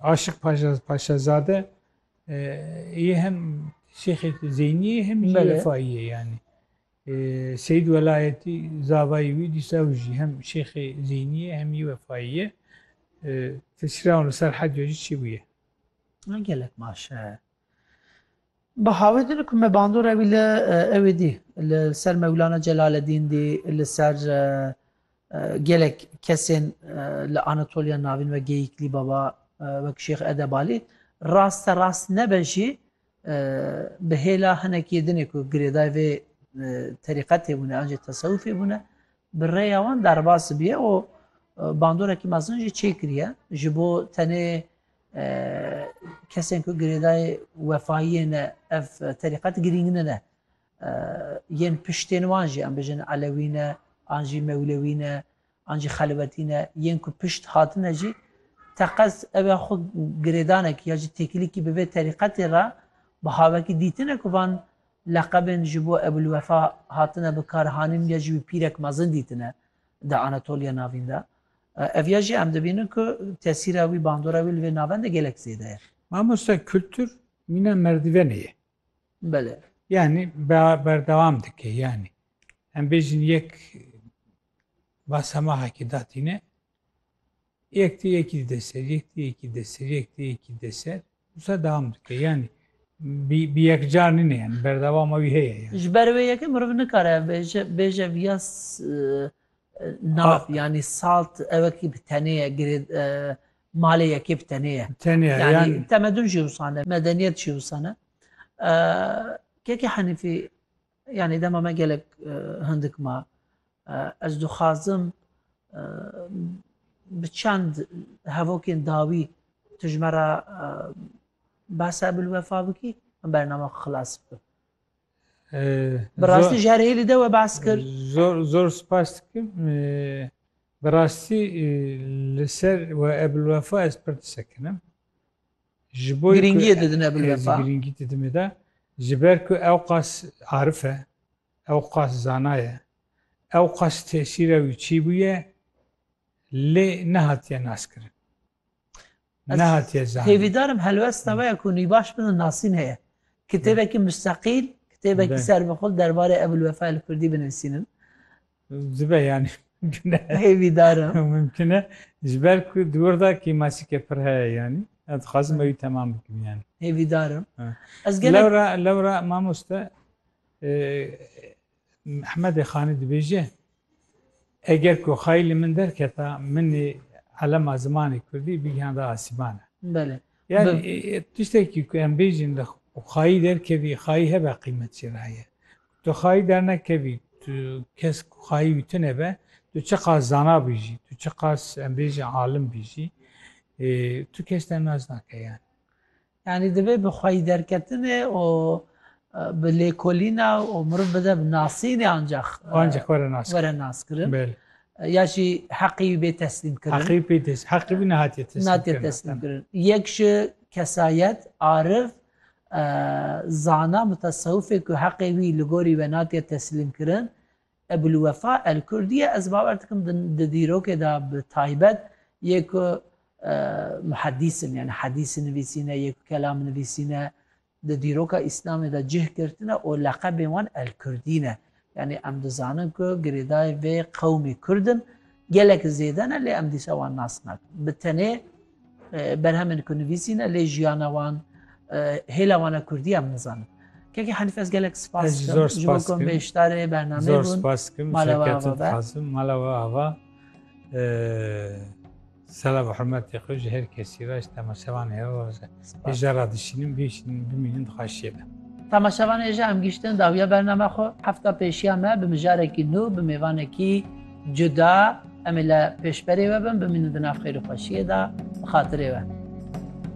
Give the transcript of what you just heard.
Aşik Paşazade yê hem Şêxê Zeyniyê hem jî Refayiyê yanî. Seyîd Welayetî zavayê wî dîsa ew jî hem Şêxê Zeyniyê hem jî Wefayiyê. Tesîra wan li ser Hediya jî çêbûye. Gelek baş e. Bi havê din ku me bandora wî li ewê dî, li ser Mewlana Celaledîn dî, li ser gelek kesên li Anatoliya Navîn wek Geyîklî Baba, wek Şêx Edebalî, raste rast nebe jî bi hêla hinekî dinê ku girêdayê vê terîqetê bûne an jî tesewufê bûne, bi rêya wan derbas bûye û bandorekî mezin jî çêkiriye ji bo tenê Kesên ku girêdayê wefayiyê ne ev terîqet girîng nine. Yên piştên wan jî em bijin Elewî ne an jî Mewlewî ne an jî Xelwetî ne yên ku pişt hatine jî teqez ew ya xwe girêdanekî ya jî têkilîkî bi vê terîqetê re bi havekî dîtine ku van leqebên ji bo Ebûlwefa hatine bikaranîn ya jî wî pîrek mezin dîtine di Anatoliya Navîn de. Ev ya jî em dibînin ku tesîra wî, bandora wî li vê navend de gelek zêde ye. Mamoste kultur mîna merdivenê ye. Belê. Yanî berdewam dike yanî. Em bêjin yek basemahekî datîne. Yek tê yekî dide ser, yek tê yekî dide ser, yek tê yekî dide ser. Wisa dewam dike yanî bi yekcar nîne yanî berdewama wî heye yanî. Ji ber wê yekê meriv nikare ev bêje, bêje viya nav yanî salt ew wekî bi tenê ye girê malê yekê bi tenê ye. Bi tenê ye yanî. Temedun jî wisa ne, medeniyet jî wisa ne. Kekê Henîfî Yanî dema me gelek hindik ma. Ez dixwazim bi çend hevokên dawî tu ji me re behsa Ebulwefa bikî em bername xilas bikim. Bi rastî ji herêlî de we behs kir. Zor zor spas dikim. Bi rastî li ser we Ebulwefa ez pir disekinim. Ji bo girîngiyê didine bil vefa. Girîngî didime de ji ber ku ew qas arif e, ew qas zana ye, ew qas tesîra wî çî bûye lê nehatiye naskirin. Nehatiye zanîn. Hêvîdarim helwesta we ye ku nîbaş bin û nasîn heye. Kitêbekî mustaqîl, kitêbekî serbixwe derbarê Ebûl Wefa li kurdî binivîsînin. Dibe yani. Hêvî dar e. Mumkin e. Ji ber ku di wir de kêmasîkê pir heye yanî. Ez dixwazim ew temam bikim yani. Hêvî dar e. Ez gelek... Lewra, lewra mamoste Mehmedê Xanî dibêje eger ku xayî li min derketa minê elema zimanê Kurdî bigihanda asîbane. Belê. Yani tiştekî ku em bêjin li xayî derkevî xayî hebe qîmet çêraye. Tu xayî dernekevî, tu kes ku xayî wî tune be, tu çiqas zana bî jî, tu çiqas em bêjin alim bî jî, tu kes te nas nake yani. Yani divê bi xweyî derketinê û bi lêkolîna û miriv bide bi nasînê ancak ancak were nas were nas kirin. Belê. Ya jî heqî wî bê teslîm kirin. Heqî wî bê teslîm. Heqî wî nehatiye teslîm kirin. Nehatiye teslîm kirin. Yek ji kesayet, arif Zana mutesewifê ku heqê wî li gorî we natiye teslîmkirin, Ebûlwefa Elkurdî ye, ez bawer dikim di dîrokê de bi taybet yê ku muhedîs in, yanî hedîs nivîsîne yê ku kelam nivîsîne, di dîroka Îslamê de cih girtine û leqebên wan Elkurdî ne. Yanî em dizanin ku girêdayê vê qewmê Kurd in gelek zêde ne lê em dîsa wan nas nakin. Bi tenê berhemên ku nivîsî ne lê jiyana wan, hêla wan e Kurdî em nizanin. Kekê Hanîf ez gelek spas dikim ji bo ku bêşdarê bernameyê bûn. Mala we ava be. Mala we ava. Selam û hurmetê xwe ji her kesî re ji temaşevanê re raz e. Hêja radişînin, bihişînin, bimînin dixwaşiyê be. Temaşevan hêja em gihîştin dawiya bername xwe. Hefta pêşiya me bi mijarekî nû, bi mêvanekî cuda em ê li pêşberê we bin, bimînin di nav xêr û xweşiyê de bi xatirê we.